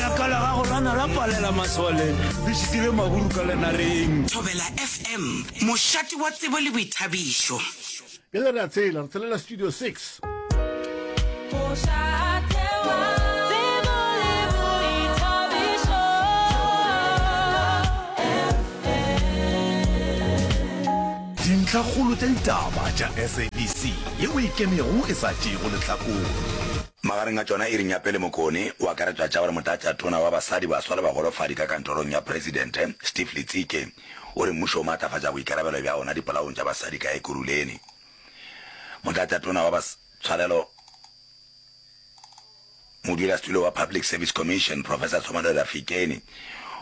Ka la gago lana la palela maswaleng, le šitile maburu ka lenareng. Thobela FM, mošate wa tsebo le boithabišo. Bjale re a tshela, re tshelela Studio 6. Dintlhakgolo tša ditaba tša SABC yeo e ikemego e sa tšeego lehlakore. Magareng a tšona, Iri Nyapele Mokone o akaretšwa tša gore Motlatšatona wa Basadi, Baswa le Bagolofadi ka kantorong ya Presidente, Steve Letsike, o re mmušo o maatlafatša boikarabelo bja ona dipolaong tša basadi ka Ekurhuleni. Motlatšatona wa Bas tshwarelo, Modulasetulo wa Public Service Commission, Professor Tshomanelo Rafikeni,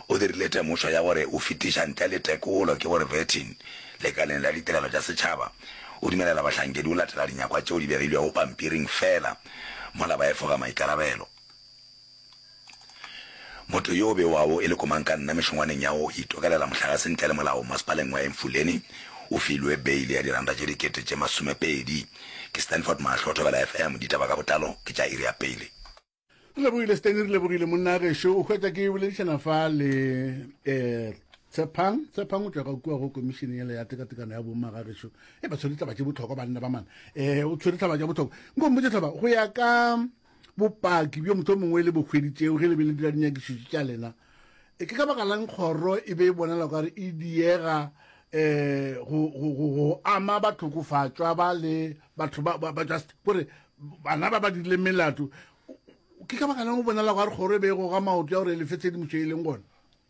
o dirile temošo ya gore o fetiša ntle le tekolo ke gore vetting Lekaleng la Ditirelo tša Setšhaba, o dumelela bahlankedi go latela dinyakwa tšeo di begilwego pampiring feela mola ba efoga maikarabelo. Motho yo o bewago e le komankanna mešongwaneng ya go itokelela mohlagase ntle le molao Masepaleng wa Emfuleni o filwe beile ya diranta tše dikete tše masomepedi. Ke Stanford Mahlo, Thobela FM, Ditaba ka botlalo ke tša iri ya pele. re lebogile steny re lebogile monna a gešo o hwetsa ke boledišana fa le um tshepang tshepang o tšwaga kua go komišene yela ya tekatekano ya bomma ga gešo e ba tshwere tlaba tše botlhokwa banna ba mana um o tshwere tlaba tša botlhokwa nko mpotse tlaba go ya ka bopaki bjo motho mongwe le bokgwedi tšeo ge le be le dira dinyakišitši tša lena e ke ka baka lang kgoro e be e bonala kare e diega um go ama bathokofatšwa ba le batho ba just kore bana ba ba dirileng melato ke ka baka lang o bonala gore kgoro e be e goga maoto ya gore e lefe tshedimošo e leng gone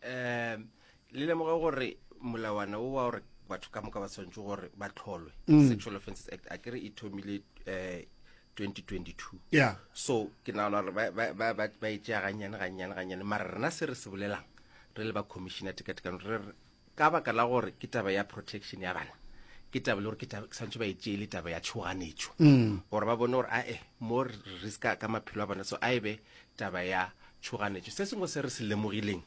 um le lemoge gore molawana o wa gore batho ka moka ba tshwanetse gore ba tlholwe mm. sexual offences act a kere e thomile um 2022 yeah. so ke nagana gore ba e tšea gannyane gannyane gannyane mara rena se re se bolelang re le ba commissioner tekatekano re re Ka baka la gore ke taba ya protection ya bana, ke taba le gore ke taba- ke swantšhe ba e tšee le taba ya tšhoganetšo gore ba bone gore ae mo re riska ka maphelo a bona so a e be taba ya tšhoganetšo. Se sengwe se re se lemogileng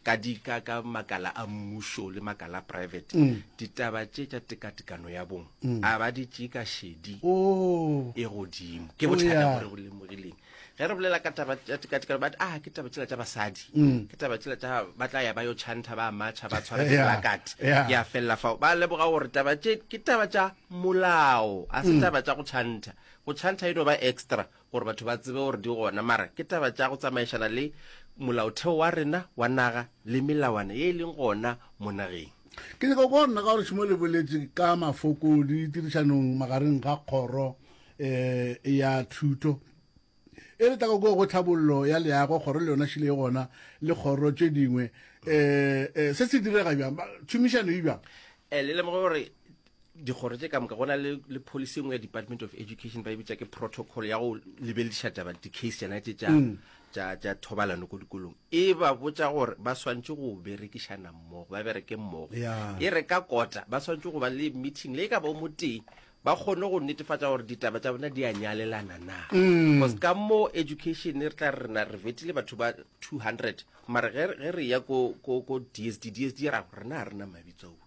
ka di ka ka makala a mmušo le makala a private ditaba tše tša tekatekano ya bong a ba di tšee ka šedi Oh. e godimo ke Oh, bothata yeah. bo re bo lemogileng ge re bolela ka taba tša tekatekano but a ke taba tšela tša basadi mm. ke taba tšela tša ba tla ya ba yo chanta ba matšha ba tshwara diplakate ya felela fao ba leboga gore taba tše ke taba tša molao a se mm. taba tša go chanta go chanta e no ba extra gore batho ba tsebe gore di gona mara ke taba tša go tsamaišana le molaotheo wa rena wa naga le melawana ye e leng gona mo nageng ke nyaka go nna ka gore šimo le boletse ka mafoko di tirišanong magareng ga kgoro um ya thuto e re tlago go go tlhabollo ya leago kgoro le yona šile e gona le kgoro tše dingwe um se se direga bjang tšhomišano e bjang um le lemoge gore dikgoro tše ka moka go na le policy engwe ya department of education ba e bitša ke protocol ya go lebelediša taba di-case tsena tše tša mm. thobalano ko dikolong e ba botša gore ba swantse go berekišana mmogo ba bereke mmogo e re ka kota ba swantse go ba le meeting le e ka ba o moteng ba kgone go netefatša gore ditaba tša bona di a nyalelana na bcause ka mo education re tla re rena re vetile batho ba 200 mare ge ge re ya ko ko ko dsd dsd ya rago rena ga rena mabitso ao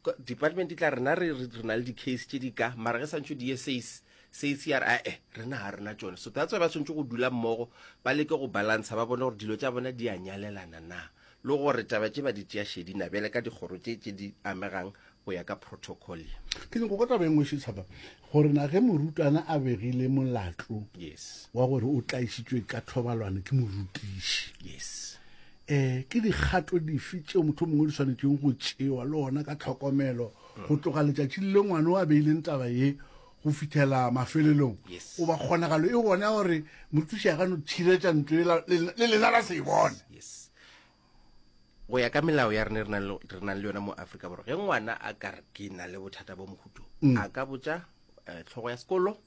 Ko- department e tla rena re re re na le di-case tše di ka mara ge santšho di ye sace sace ya re ae rena ga rena tšone so that's why ba swantšhe go dula mmogo ba leke go balansa ba bone gore dilo tša bona di a nyalelana na le gore taba tše ba di tšea šedina bjale ka dikgoro tše tše di amegang go ya ka protocol ye. Ke nyako ka taba e nngwe šetšhaba gore na ge morutwana a begile molatlo Yes, wa gore o tlaišitšwe ka thobalwane ke morutiši yes. um ke dikgato dife tšeo motho mongwe di swanetšeng go tšewa le ona ka tlhokomelo go tloga letšatši le ngwana o a beileng taba ye go fitlhela mafelelong goba kgonagalo e gona gore mothuši a ka no tshiretša ntlo le lena la se e bone go ya ka melao ya rene re nang le yona mo aforika borwa ge ngwana a ka re ke na le bothata bo mokhutong mm. a ka botsa eh, tlhogo ya sekolo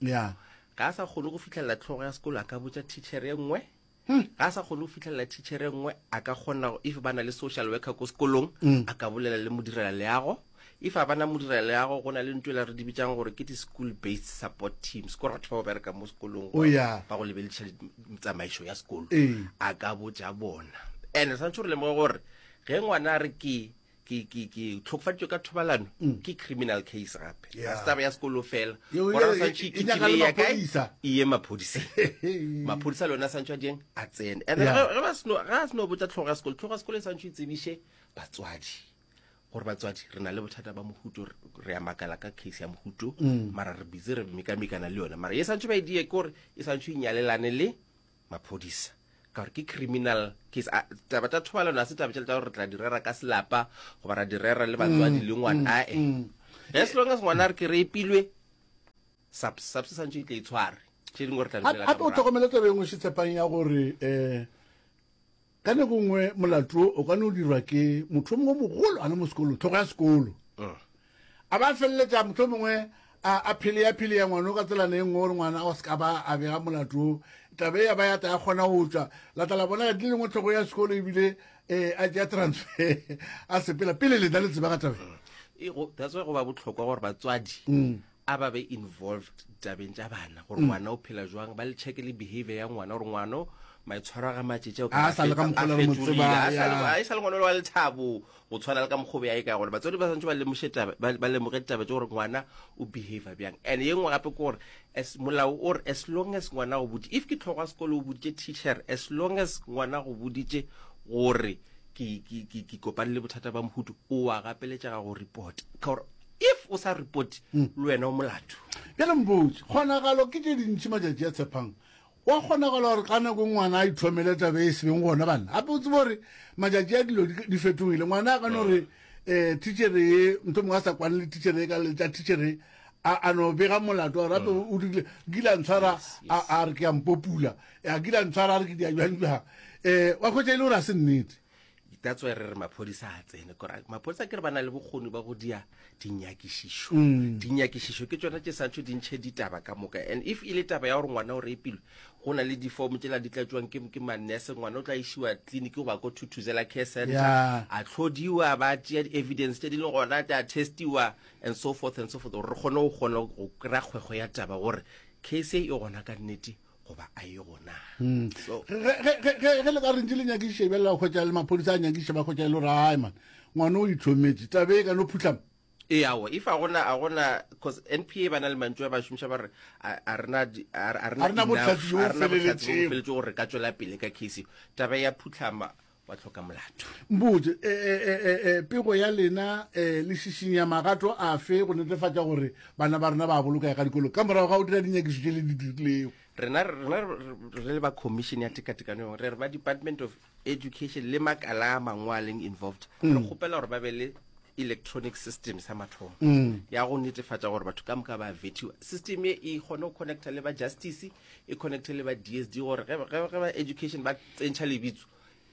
ga a sa kgone go fitlhelela tlhogo ya sekolo a ka botsa teacher e nngwe Hum, ga a sa kgone go fitlhelela thichere nngwe a ka kgona go- if ba na le social worker ko sekolong Mm. a ka bolela le modirela leago if a bana modirela leago go na le ntho e la re di bitsang gore ke di-school based support teams ko re batho ba go bereka mo sekolong O ya. ba go lebelediša di- tsamaišo ya sekolo Ee. a ka botša bona and re tshwanetse re lemoge gore ge ngwana a re ke ke ke ke tlhokofaditswe ka thobalano mm. ke criminal case gape ga se taba ya sekolo fela gora santšhe e kitile ya kae e ye maphodiseng maphodisa le yone a santšhe a dieng a tsene and ga a seno botsa tlhogo ya sekolo tlhogo ya sekolo e santšhe e tsebiše batswadi gore batswadi re na le bothata ba mohuto re ya makala ka case ya mohuto mm. mara re bitse re mekamekana le yone mara e santšhe ba e die ke gore e santšhe e nyalelane le Maphodisa ka gore ke criminal case. A, taba tša thobalano ga se taba tšela tša gore re tla di rera ka selapa goba ra di rera le batswadi le ngwana ae as long as ngwana a re ke re epilwe subs subs sa ntse e tle e tshware tše dingwe re tla di bolela ka gape o morago. tlhokomele taba e nngwe šitshepang ya gore um Ka nako nngwe molato wo o ka no dirwa ke motho mongwe mogolo a le mo sekolong, tlhogo ya sekolo. A ba feleletša motho mongwe a a pheleya pheleya ngwana o ka tselana e nngwe gore ngwana o se ka ba a bega molato wo. Tabe ya ba ya ta ya kgona go tšwa. La tla la bona ka di lengwe tlhogo ya sekolo ebile a tšea transfer a sepela pele lena le tseba ka tabe. That's why go ba bohlokwa gore batswadi a ba be involved tabeng tša bana gore ngwana o phela jwang ba le checke le behavior ya ngwana gore ngwana o maitshwaro a ga matšetše o A sa le ka mokgwa lo re mo tsebang, ya. e sa le ngwana o le wa lethabo go tshwana le ka mokgobe ya e ka gona batswadi ba swantse ba lemoše taba ba ba lemoge taba tše gore ngwana o behavior bjang and ye nngwe gape ke gore as molao o re as long as ngwana go boditše if ke tlhogo ya sekolo o boditše teacher as long as ngwana go boditše gore ke ke- ke- ke kopane le bothata ba mohutu o a gapeletšega go report ka gore if o sa report hmm. le wena o molato bjale mpotse kgonagalo ke tše dintši matšatši a tshepang wa kgonagala gore ka nako ngwana a itlhomele tabe e sebeng gona banna gape o tsebe gore matšatši a dilo di fetogile ngwana a ka no re um eh, tichere ye nto mongwe a sa kwane le tichere ye ka letša tichere a no bega molato wa gape mm. o dirile kila ntshwara a re ke a mpopula a kila ntshwara a re ke diajwanjwa um eh, wa kgwetsa e le gore a se nnete that's why re re maphodisa a tsene kora maphodisa ke re ba na le bokgoni ba go dia dinyakišišo mm. dinyakišišo ke tsona tše santšho di ntšhe ditaba ka moka and if e le taba ya gore ngwana o repilwe go na le difomo tšela di tlatšwang ke, ke mannese ngwana o tla išiwa tleliniki goba ko thuthuzela care center yeah. a tlhodiwa ba tšea di-evidence tše di le gona tša testiwa and so forth and so forth gore re kgone go kgone go kry-a kgwego ya taba gore case e gona ka nnete goba a ye gona hmm. ge le ka rentse le nyakiše bjale ba kgwetsa le maphodisa a nyakiše ba kgwetsa e le gore ai man ngwana o itlhometse tabe e ka no phutlhama ee ao if a gona a gona cause n p a ba na le mantso a ba šomiša ba re a rena botlhatsi gore re ka tswela pele ka case taba ya phutlhama ba hloka molato. Mpotše, e, e, e, e, e, pego ya lena e, le šišinya magato afe go netefatša gore bana ba rena ba bolokega ka dikolong ka morago ga go dira dinyakišo tše le di dirilego? Rena, rena re le ba Commission ya Tekatekano yone, re re ba Department of Education le makala a mangwe a leng involved, re mm. kgopela gore ba be le electronic system sa mathomo mm. ya go netefatša gore batho ka moka ba vetiwa system e e kgone go connecta le ba justice e connecte le ba dsd gore ge ba education ba tsentšha lebitso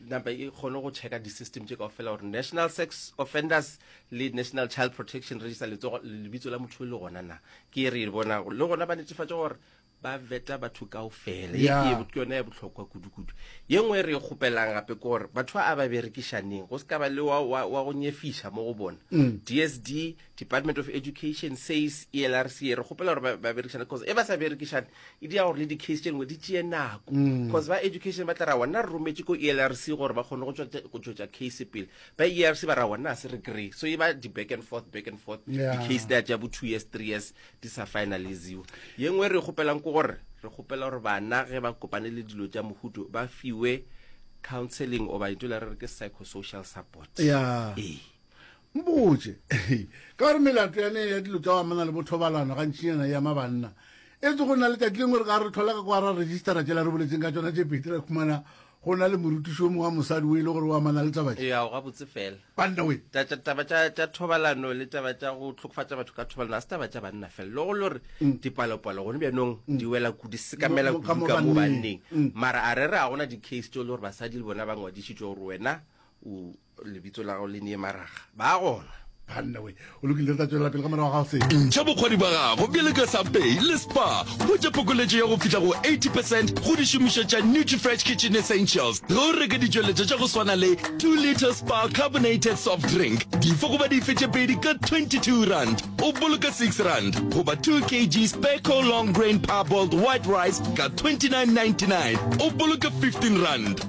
napa e kgone go checka di-system tše kao fela gore national sex offenders le national child protection register letsogo lebitso la motho e le gona na ke e re e bona le gona ba netefatse gore ba veta batho kao fela e ke yone ya botlhokwa kudu-kudu ye nngwe e re e kgopelang gape ke gore batho ba a ba berekišaneng go se ka ba le wa go nyefiša mo go bona dsd mm. Department of Education says ELRC re kgopela gore ba berekishane because e ba sa berekishane e dira gore le di-case tše dingwe di tšee nako because mm. ba education ba tla ra wona re rometse ko ELRC gore ba kgone go tšwetša case pele ba ELRC ba ra wona a se re kry so e ba di-back and forth back and forth di-case di a tša bo two years three years di sa finaliziwa ye nngwe re kgopelang ko gore re kgopela gore bana ge ba kopane le dilo tša mohuto ba fiwe counseling oba ito la re re ke psychosocial support yeah. e Mpotše, ka gore melato ya ne ya dilo tša go amana le bothobalano gantšinyana e ama banna. Etse go na le tšatši lengwe re ka re thola ka kwa ra registera tšela re boletseng ka tšona tše pedi, ra khumana go na le morutiši o mongwe wa mosadi o e le gore o amana le taba tše. Eya, gabotse fela. Banna we! Taba tša, tša thobalano le taba tša go hlokofatša batho ka thobalano ga se taba tša banna fela. Le go le gore dipalopalo gone bjanong di wela kudu, di sekamela kudu ka mo banneng. Mara a re re ga gona di-case tšeo e le gore basadi le bona ba ngwadišitšwe gore wena o, Lebitso la gago le ne maraga. Ba gona. Banna we, o lokile re tla tšwelela pele ka morago ga se. Ntšha bokgwadi bwa gago bjale ka Subway le Spar. Hwetša phokoletšo ya go fihla go 80 percent go dišomišwa tša Nutrifresh Kitchen Essentials ge o reka ditšweletšwa tša go swana le 2 litre Spar Carbonated Soft Drink dife goba dife tše pedi ka R22. O boloka R6 goba 2 kg Spare Co Long Grain Parboiled White Rice ka R29.99. O boloka R15.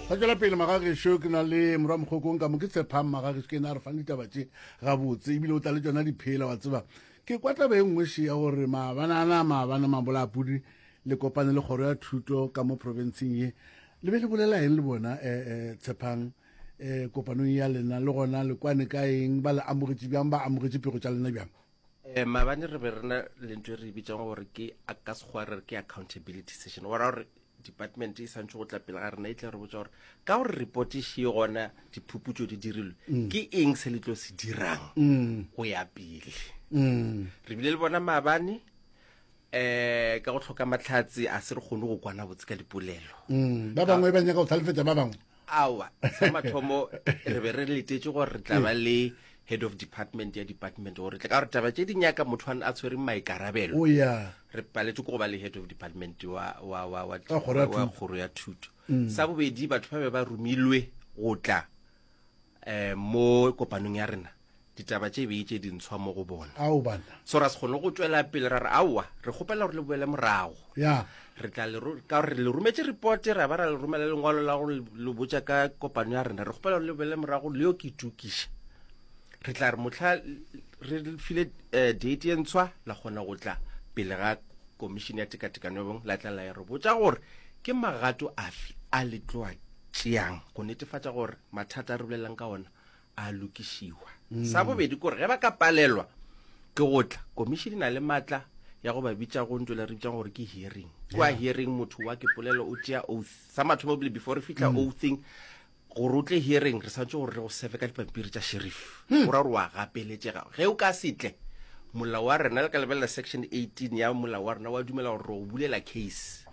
Ra tšwela pele magagešo, ke na le morwa mokgokong ka mo ke tshephang magagešo ke ena a re fang ditaba tše gabotse ebile o tla le tšona diphela wa tseba ke kwa taba e nngwe še ya gore maabanana maabane mabolaapudi le kopane le kgoro ya thuto ka mo profenseng ye le be le bolela eng le bona um eh, eh, tshephang um kopanong ya lena le gona le kwane ka eng ba le amogetše bjang ba amogetše pego tša lena bjang um mabane re be re na le ntho e re e bitsang gore ke ka sekgwa re re ke accountability session ora gore department e santse go tla pele ga rena e tla re botsa gore ka gore report e shee gona diphuputso di dirilwe mm. ke eng se le tlo se dirang mm. go ya pele mm. re bile le bona maabane um ka go tlhoka matlhatsi a se re kgone go kwana botse ka dipolelo mm, ba bangwe ba nyaka go tlhalefetsa ba bangwe awa sa mathomo re be re letetse gore re tla ba le head of department ya department gore tle ka gore taba tse di nyaka motho a tshwere maikarabelo oh, re paletse ko go ba le head of department wa kgoro ya thuto mm. sa bobedi batho ba be ba romilwe go tla um mo kopanong ya rena ditaba tše bee tše dintshwa mo go bona ao bana so ra se kgone go tšwela pele ra re aowa re kgopela gore le boele morago ya re tla le ro- ka gore re le rometše repote ra ba ra le romela lengwalo la go le- le botša ka kopano ya rena re kgopela gore le boele morago le yo ke itukiša re tla re motlha re le file um date e ntshwa la kgona go tla pele ga komišene ya tekatekano ya bong la tla la ya re botša gore ke magato afe a le tloa tšeang go netefatša gore mathata a re bolelelang ka ona a lokišiwa mm. sa bobedi kore ge ba ka palelwa ke go tla komišene na le maatla ya go ba bitša go ntšwela re bitšang gore ke hearing kua hearing motho wa ke polelo o tšea oath sa mathomo bile before re fitlha mm. oathing gore o tle hearing re santse gore re go sefe ka dipampiri tša sheriff mm. o ra gore wa gapeletšega ge o ka setle molao wa rena le ka lebelela section 18 ya molao wa rena wa dumela gore re o bulela case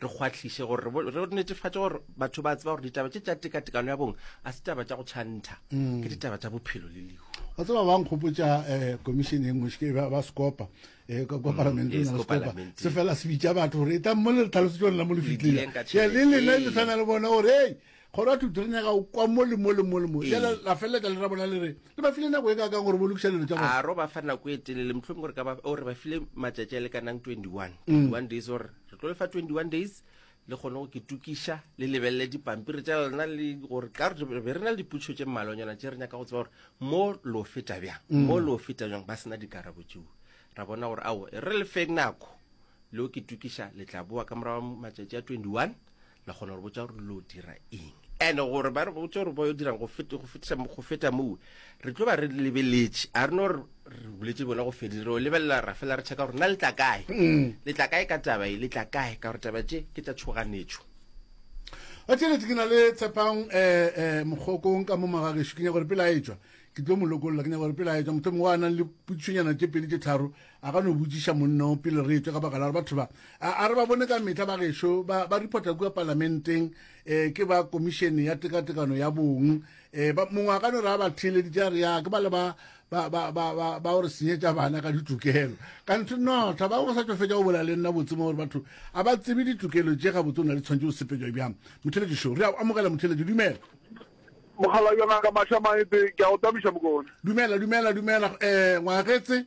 re kgwahliše gore re netefatše gore batho ba tseba gore ditaba tše tša tekatekano ya bong a se taba tša go tšhantha mm. ke ditaba tša bophelo le lehu wa tseba ba nkgopotša um eh, commission e nngwe seke ba sekopa um eh, kwa mm, palamenteng ya sekopa se fela se bitša batho gore e tla mo le tlhalosetšone la mo le fitlile le lena le tshwana le bona gore ei kgoro ya thuto le nyaka o kwa mo le mo le mo le mo Ee. jale la felela ka le ra bona le re le ba file nako e ka kang gore bo lokiša dilo tša bona a ro ba fa nako e telele mohlomong gore ka ba o re ba file matšatši a lekanang 21 Mm. 21 days gore re tlo le fa 21 days le kgone go ketukiša le lebelele dipampiri tša lona le gore ka re be re na le dipotšišo tše mmalwanyana tše re nyaka go tseba gore mo lo feta bjang Mm. mo lo feta bjang ba sena dikarabo tšeo ra bona gore ao e re le fe nako le o ketukiša le tla boa ka morago matšatši a 21 La kgona gore botsa gore lo dira eng and gore ba re botsa gore ba yo dirang go feta moo re tlo ba re lebeletše a re no re boletse bona go fedile re lebelela ra fela re checka gore na le tla kae mm. le tla kae ka taba e le tla kae ka gore taba tše ke tsa tshoganetšo a tšhelete ke na le tshepang um eh, eh, mogokong ka mo magageso ke nyaka gore pele a etswa ke tlo mo lokolola ke nyaka gore pele a etswa motho mongwe a nang le putšonyana tše pedi tše tharo a ka no botšiša monna o pele re etšwe ka baka la gore batho ba a re ba bone ka metlha ba gešo ba ba reporta kua palamenteng um ke ba komišene ya tekatekano ya bong um mongwe a ka no re a ba theeleditše a re ya ke ba le ba ba gore senyetša bana ka ditokelo ka ntho no thaba go sa tšo fetša go bola le nna botsemo gore batho a ba tsebe ditokelo tše ga botse o na le tshwanetse o sepetšwa bjang motheletši šo re a amogela motheletši dumela mogala jona ka maša maete ke a go tabiša mokone dumela dumela dumela um ngwagetse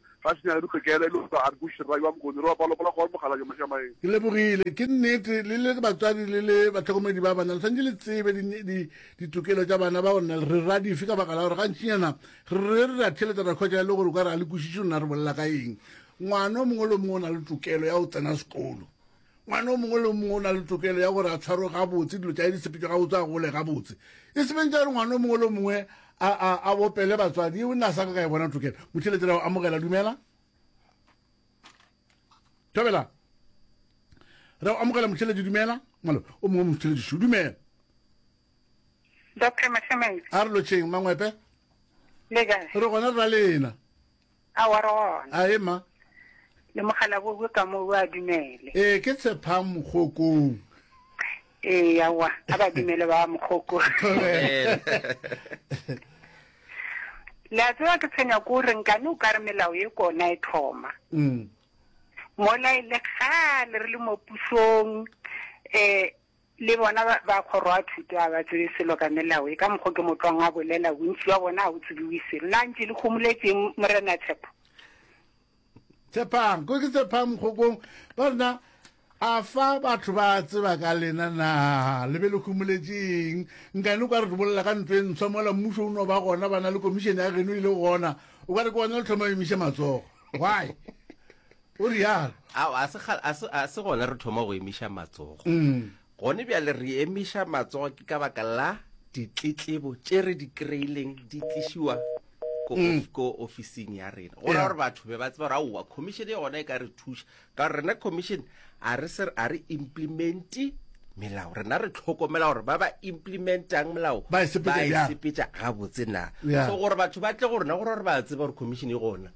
Ga se nyaka dikgekele, e le gore a re kwešiše rrayo wa Mokone. Re wa palopala kgoro mokgalabje Mashamaeng. Ke lebogile. Ke nnete, le le batswadi le le bahlokomedi ba bana le swanetše le tsebe di, di, ditokelo tša bana bao nna re ra dife ka baka la gore gantšinyana re re re ra theletsa ra hwetša e le gore o ka re ga le kwešiše nna re bolela ka eng. Ngwana o mongwe le o mongwe o na le tokelo ya go tsena sekolo. Ngwana o mongwe le o mongwe o na le tokelo ya gore a tshwarwe gabotse, dilo tša di sepetšwe gabotse, a gole gabotse. E se beng tša gore ngwana o mongwe le o mongwe a, a, a bopele batswadi. Yeo nna a sa ka ka e bona tokelo. Motheletše ra go amogela. Dumela. Thobela. Ra go amogela motheletše. Dumela. Malo, o mongwe motheletše šo. Dumela. Doctor Mahlometse. A re lotšheng, Mangwepe. Le kae? Re gona re ra lena. A wa re gona. A ema. Le mogala bo bwe ka mo bo a dumele. Ee, ke tshepang mokgokong. Ee, a wa. A ba dumele ba mokgoko. Le a tseba ke tshwenya ko re nkane o ka re melao ye kona e thoma. Mm. Mola e le kgale re le mo pusong eh Le bona ba, ba kgoro a thuto a ba tsebe selo ka melao e, ka mokgo ke mo tlwang a bolela, bontši bja bona ga go tsebiwe selo. Na ntše le homoletšeng, Morena Tshepo? Tshepang, ko ke Tshepang Mokgokong, ba rena, a fa batho ba tseba ka lena na le be le homoletšeng nkane o ka re re bolela ka ntlo e ntshwa mola mmušo o no ba gona ba na le komišene ya geno e le gona o ka re ke gona le thoma emiša matsogo why O realo. Ao, a se kgale, a se, a se gona re thoma go emiša matsogo. Gone bjale re emiša matsogo ke ka baka la ditletlebo tše re di kry-ileng di tlišiwa ko, of, ko ofising ya rena, go ra Yeah. gore batho be ba tseba gore aowa commission ye gona e ka re thuša, ka gore rena commission a re se, a re implementi melao, rena re tlhokomela gore ba ba implementang melao Ba e sepetša ba e bjang? sepetša gabotse na. Yeah. So gore batho ba tle go rena go ra gore ba tseba gore commission e gona.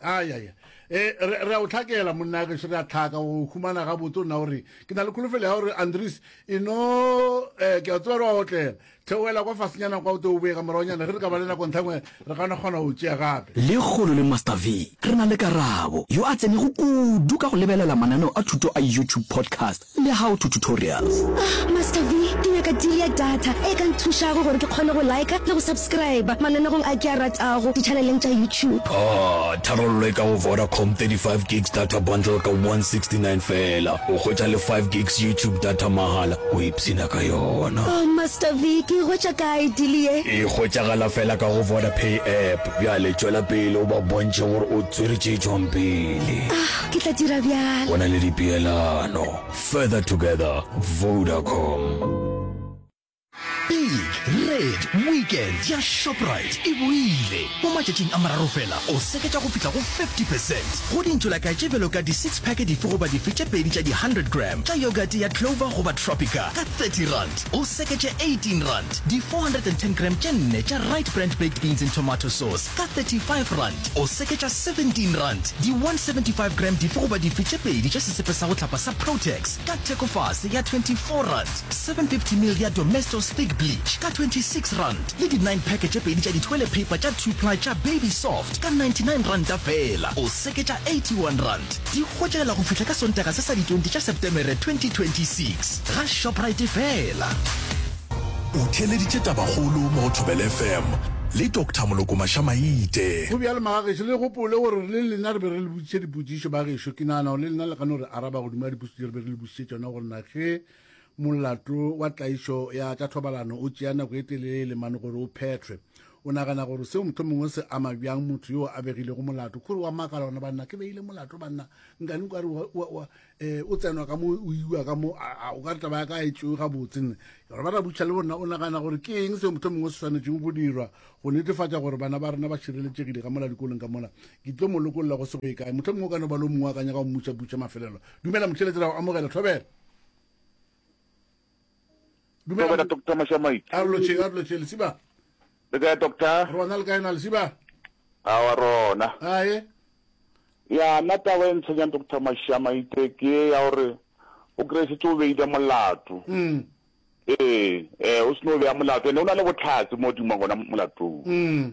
ayaya eh, e re a o tlhakela monna ke re a tlhaka o khumana ga botse o nna gore ke na le kholofelo ya gore andres e no um eh, ke a tsewa re wa otlela theoela kwa fasenyana kwa o te o boe ka moragonyana ge re ka ba le nako ntlhangwe re kana kgona go tšea gape le kgolo le master v re na le karabo yo a tsenego kudu ka go lebelela mananeo a thuto a youtube podcast Le how to tutorials. Ah Master V, ke nyaka deal ya data e ka nthušago gore ke kgone go liker le go subscriber mananegong a ke a ratago di-channeleng tša YouTube. Ah, tharollo e ka go Vodacom, 35 gigs data bundle ka 169 feela, o hwetša le 5 gigs YouTube data mahala, o ipshina ka yona. Oh Master V, ke e hwetša kae deal ye? E hwetšagala feela ka go Vodapay app. Bjale tšwela pele o ba bontšhe gore o tswere tše tšwang pele. Ah, Ke tla dira bjalo. Go na le dipeelano. Further together, Vodacom. Big Red Weekend ya Shoprite e boile! Mo matšatšing a mararo fela o seketša go fihla go 50 percent go dintšolaka tše bjalo ka di-six pack dife goba dife tše pedi tša di-hundred gram tša yogurt ya Clover goba Tropica ka thirty rand, o seketše eighteen rand di-four hundred and ten gram tše nne tša Rite Brand baked beans and tomato sauce Ka 35 rand o seketša 17 rand di 175 gram dife goba dife tše pedi tša sesepe sa go hlapa sa Protex ka thekofase ya 24 rand, 750 ml ya Domestos Thick Bleach ka 26 rand le di nine pack tše pedi tša dithoile paper tša two ply tša Baby Soft ka 99 ranta feela o seketša 81 rand. Di hwetšagala go fihla ka Sontaga se sa di 20 tša Setemere 2026. Ga Shoprite feela. O theeleditše tabakgolo mo go ThobelFm le Doctor Moloko Mašamaite. Go bjalo Magagešo, le gopole gore le lena re be re le botšiša dipotšišo. Bagešo, ke nagana gore le lena le ka no re araba godimo ga dipotšišo tše re be re le botšišitše tšona, gore na ge molato wa tlaišo ya tša thobalano o tšea nako e telele mane gore o phethwe, o nagana gore seo mohlomongwe se ama bjang motho yo a begilego molato? K'ore wa makala gona, Banna, ke beile molato, banna, nkane o ka re wa, wa, wa, Eh, o tsenwa ka mo o iwa ka mo o ka taba ya ka e tšewe gabotse nne gore ba rabutšha le borena o nagana gore ke eng seo motho mongwe se tshwanetseng go dirwa go netefatša gore bana ba rena ba šireletšegile ka mola dikolong ka mola ke tlo mo lokolola go se go e kae motho mongwe o ka no ba lo mongwe a ka nyaka go mmutšabutša mafelelo dumela motlheletsela go amogela thobela Dumela. Dumela Doctor Mashamaiti. A re lotšeng, a re lotšeng, Lesiba. Le kae Doctor? Rona le kae na Lesiba? A wa rona. Ae. Ya nna taba e ntshwenyang Doctor Mashamaite ke e ya gore o kry-e setse o beile molato. Mm. Ee, eh, o seno o beya molato ene o na le botlhatse mo dimo gona molatong. Mm.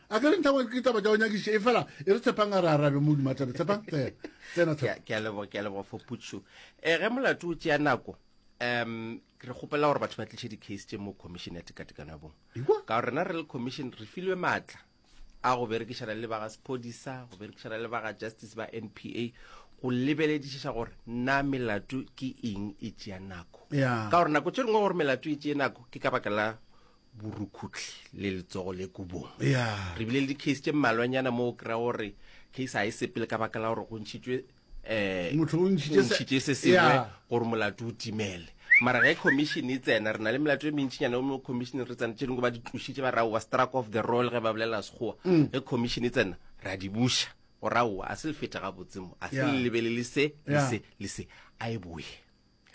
a ke re nthago ke taba tša go nyakiše e fela e re tshepang a re arabe mo dumatabe tshepang tsena tsena Ke a- ke a leboga ke a leboga for putso um ge molato o tšea nako um re kgopela gore batho ba tliše di-case tše mo commission ya tekatekano ya bong Ewa. ka gore rena re le commission re filwe maatla a go berekišana le ba ga sephodisa go berekišana le ba ga justice ba n p a go lebeledišiša gore na melato ke eng e tšea nako Ya. ka gore nako tše dingwe gore melato e tšee nako ke ka baka la borukhutlhi le letsogo le kubong yeah. re bile le di-case tše mmalwanyana mo o kry-a gore case ga e sepele ka baka la gore go ntšhitšwe um motho o ntšhitše se sengwe gore molato o timele mara ge commission e tsena re na le melato e mentšhinyana mo commission re tsena tše dingwe ba di tlošitše ba raowa struck off the roll ge ba bolela sekgowa mm. ge commission e tsena re a di buša go raowa a se le feta ga botsemo a se le lebelele se le se le se a e boye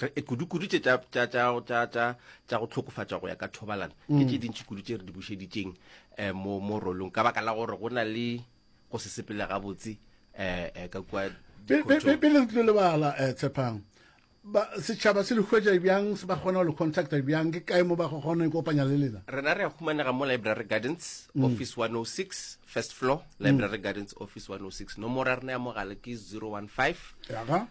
re e kudu-kudu tše tša go tlhokofatša go ya ka thobalano ke mm. tše dintši kudu tše re di bušeditšeng um mo mo rolong ka baka la gore go na le go se sepele gabotse um ka kua pele re tlile lebala um tshepang setšhaba se le hwetša bjang se ba kgona go le contacta bjang ke kae mo ba go kgona ikopanya le lena rena re ya humanega mo library gardens mm. office 106 first floor mm. library gardens office 106 nomoro ya rena ya mogale ke 015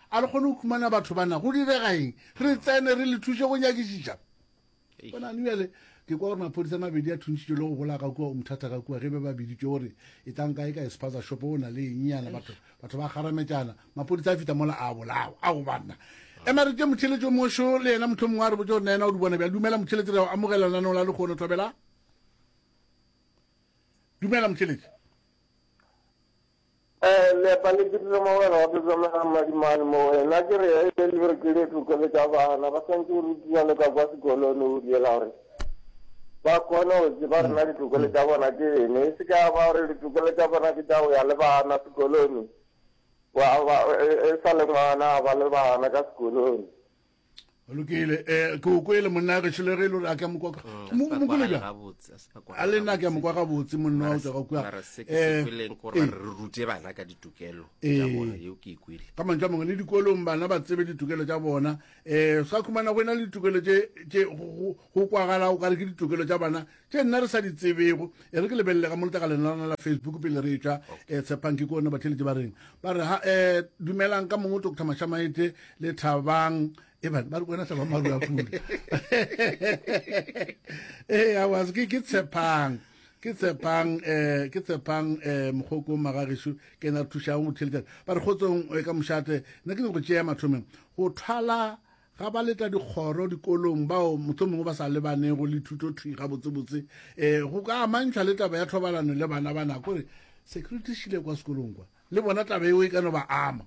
A re kgone go khumana batho ba na, go direga eng? Re tsene, re le thuše go nyakišiša. Bonang, bjale, ke kwa gore maphodisa a mabedi a thuntšitšwe le go bolaya ka kua Umtata ka kua, ge be ba biditšwe gore e tlang kae ka espaza shop, o na le eng nyana, batho, batho ba kgarametšana, maphodisa a fihla mola a bolawa. Ao, banna! Ema re tšee motheletši o mošo, le yena mohlomongwe a re botše gore na yena o di bona bjang. Dumela, motheletši, re a go amogela lenaneong la lehono. Thobela. Dumela, motheletši. Leepa le dirile mogwera wa Sesamela mmadimane mo wena, ke re e be le re ke le tlokele ka bana ba swantse go rutiwa le ka kwa sekolong o diela gore ba kgone go tseba rena ditokelo tša bona ke ene e se ka ba gore ditokelo tša bona ke tša go ya le bana sekolone e sa le ngwana ba le bana ka sekolone lokile um ke o kwele monna ge šele re le gore a ke a mokwa mokole bja a le nna ke a mokwa gabotse monna wa tswa kua ka mantse a mangwe le dikolong bana ba tsebe ditokelo tsa bona um sa khumana go e na le ditokelo tse go kwagala o kare ke ditokelo tsa bana tše nna re sa di tsebego e re ke lebelele ga moleta ka lena lona la facebook pele re etšwa um eh, tshepang ke kone batheletše ba reng ba re ha um eh, dumelang ka mongwe doctor mashamaete le thabang ebane ba re kwena thabang maru a pula ee awas ke tshepang ke tshepang eh ke tshepang eh mogoko magagesho ke na thušang go theletša ba re kgotsong eh, ka mošate nna ke ne go tšea mathomeng go thwala ga ba letla dikgoro dikolong bao mohlomongwe ba sa lebanego le thuto thwi gabotsebotse um go ka amantšhwa le taba ya thobalano le bana ba nako re security šile kwa sekolong kwa le bona taba eo e ka no ba ama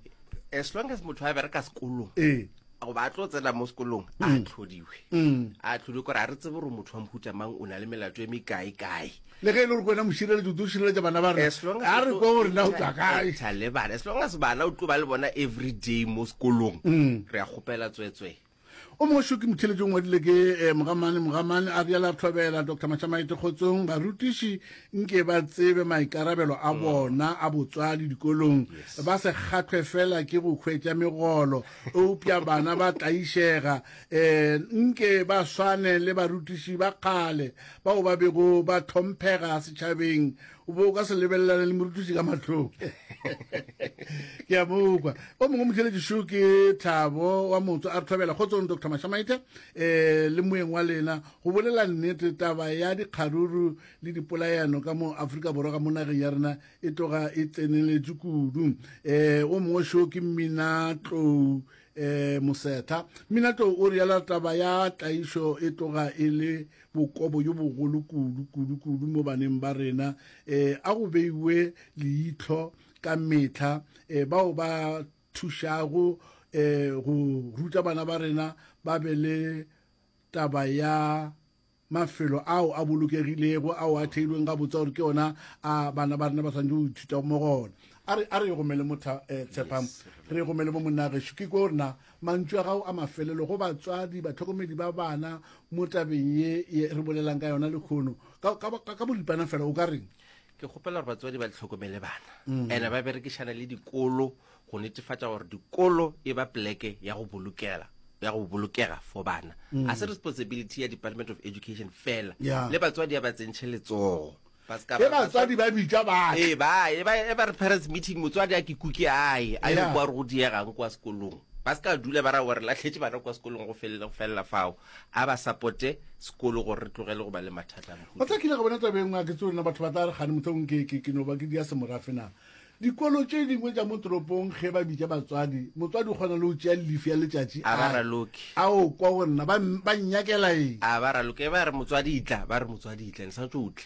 as long as motho a bereka sekolong ee goba a tlo tsena mo sekolong a mm. tlhodiwe mm. a tlhodiwe kore a re tsebe gore motho wa mohutamang o na le melato e mekae kae le ge e le gore kwena mošireletsi o tlo šireletša bana ba rena a re kwa gore na o tswa kaeta le bana as long as bana o tlo ba le bona every day mo sekolong mm. re a kgopela tswetswe o mongwe šo ke motheletšong ngwadile ke eh, mogamane mogamane a bjala tlhobela dr mashamaete kgotsong barutiši nke ba tsebe maikarabelo a mm. bona a botswadi dikolong ba se kgathwe fela ke go hwetša megolo eupša bana ba tlaišega um nke ba swane le barutiši ba kgale bao ba bego ba tlhomphega setšhabeng o be o ka se lebelelane le morutiši ka matlhong ke a mokwa o mongwe motheletšišo ke thabo wa motso a re tlhobela kgotsong dr mashamaite um le moeng wa lena go bolela nnete taba ya dikgaruru le dipolayano ka mo aforika borwa ka mo nageng ya rena e tloga e tseneletše kudu um o mongwe šo ke mmina tlou E, Mosetha. Minato o rialo taba ya tlaišo e tloga e le bokobo yo bogolo kudu, kudu, kudu mo baneng ba rena. E, a go beiwe leihlo ka mehla e, bao ba thušago e, go ruta bana ba rena ba be le taba ya mafelo ao a bolokegilego ao a theilweng gabotse gore ke ona a bana ba rena ba swanetse go ithuta mo gona a re a re gomele motha eh, tshepang re gomele mo monna geso ke ko rena mantšu a gago a mafelelo go batswadi batlhokomedi ba bana mo tabeng ye ye re bolelang ka yona lekgono ka, ka, ka, ka boripana fela o ka reng ke kgopela gore batswadi ba tlhokomele bana ene ba berekišana le dikolo go netefatša gore dikolo e ba pleke ya go bolokela ya go bolokega for bana mm. a se responsibility ya department of education fela yeah. le batswadi ya ba tsentšhe letsogo e batswadi ba bitša bae e ba re parents meeting motswadi a ke kuke ae a ye kwa re go diegang kwa sekolong ba se ka dula ba ra gore latlhetse bana kwa sekolong go felela go felela fao a ba supporte sekolo gore re tlogele go ba le mathata o tla kile go bona tabeng a ke tse lena batho ba tla re gane motlhong ke ke ke no ba ke dia semorafena Dikolo tše dingwe tša mo toropong ge ba bitša batswadi, motswadi o kgona le go tšea llifi ya letšatši A ba a raloki. a o kwa go nna, ba, m- ba nnyakela eng? A ba raloki. E ba re motswadi itla, ba re motswadi itla, le swanetše o tle.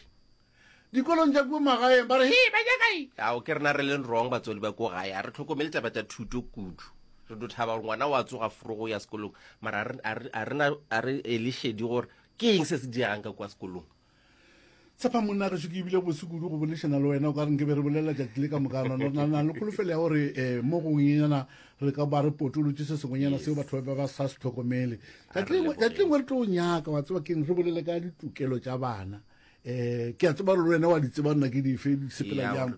Dikolong tša kua magaeng ba re, Hee, ba nyaka eng? Ao, ke rena re leng wrong batswadi ba ko gae. A re tlhokomele taba tša thuto kudu. Re do thaba gore ngwana wa tsoga fro go ya sekolong, mara a re, a re, a re, a re ele šedi gore ke eng se se diregang ka kua sekolong. tshepa monna ge se ke ebile bose kudu go bolešana le wena o ka re nke be re bolelela tšatši le ka mokana na le kholofelo ya gore um mo gongwenyana re ka ba re potolotse se sengwenyana seo batho ba ba sa se tlhokomele tšatšingwe re tlo nyaka wa tseba keng re bolele ka ditokelo tša bana um ke a tseba gore le wena wa di tseba nna ke dife di sepela jang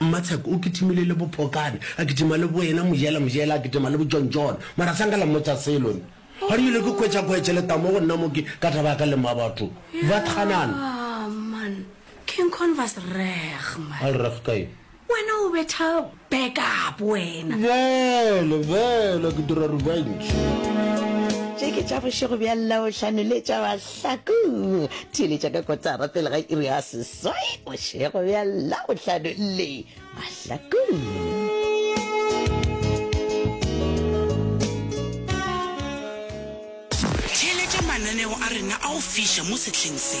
Mmatsheko o kitimile le Bophokane, a kitima le Boena, Mojela, Mojela, a kitima le Bojontjone. Mara sa nka la mmotša selo nna. Ga rile ke hwetša kgoetše le tamo go nna mo ke ka taba ya ka le mma batho. Ba tganana. Yaa, man. King Con was reg, man. A le reg ka eng? Wena o betha back up, wena. Bjale, bjale, ke dira revenge. Tše ke tša bošego bja Labohlano le tša Mahlaku. Theeletša ka kotara pele ga iri ya ses. Soy bošego bja labohlano le mahlakong. Theeletša mananeo a rena a go fiša mo sehleng se.